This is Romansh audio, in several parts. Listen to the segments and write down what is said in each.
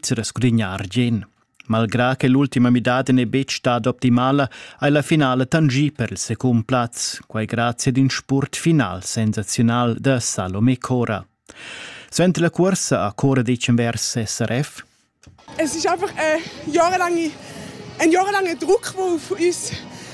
rescudegnar Jen. Malgrà che l'ultima midada n'è betg stada optimala, hai la finala tangì per il secund plaz, quai grazie ad in spurt final sensazional da Salome Cora. Suenter la cursa a Cora decemvers SRF Es ist einfach eine jahrelange, ein jahrelanger Druck, der auf uns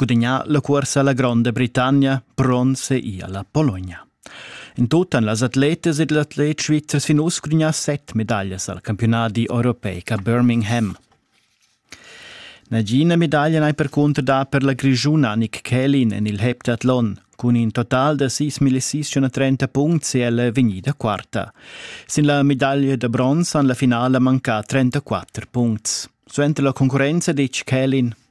gudagnà la cursa alla Gronda Britannia, bronze e alla Bologna. In tut han las atletas ed atlets svizzers fin uss gudagnà set medaglias al campionati europeic a Birmingham. Nagina medaglia n'hai percunter dà per la grischuna Nick Kellin en il heptathlon. Cun in total da 6.630 punts è ella vegnida quarta. Sin la medaglia da bronz han la finala mancà 34 punts. Suenter la concurrenza ditg Kellin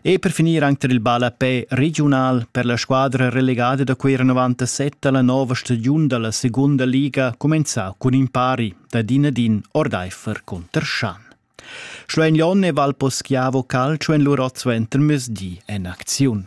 E per finir anche il ballapè regiunal per la squadra relegada da quei 97 alla nova stagiun dalla seconda liga comenzà cun in pari da din ad in ordeifer contr Schan. Schluein Jon e Valpo Schiavo Calcio en lur ozzo enter mesdi en acziun.